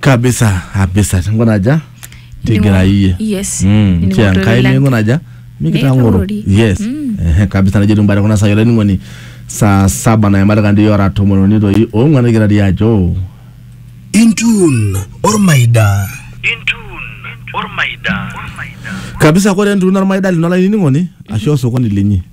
kabisa kabisa tingunaja tigira iyie yes Mm, Nining'oto kia nkai lang. mingunaja mikitang'oro Mikitang'ori. yes Mm. Ehe, kabisa najo timbare kuna saai olainining'oni saa saba nayamata kandi ora tomon uni toi ong'uan nigira dii ajo Intun ormaida. kabisa kore entuuno ormaida lino olainining'oni ashu osokoni linyi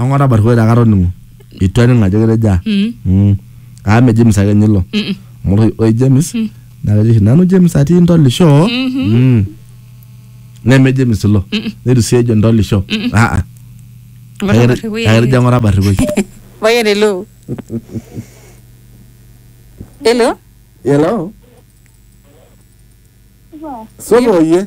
Ang'or abarikoi taa katoning'o. Eitu aning ajo ketejo aa. Mm. Mm. Aa me James ake ninye ilo. Mm-mm. Amu ore- ore James naa kejo oshi nanu James atii ntolisho. Mm. Neme James ilo. Neitu sii ejo ntolisho. Ah, ah. Ang'or Kake abarrikoi kake etejo ang'or abarrikoi. Payian hello. Hello. Hello. Supa oyie.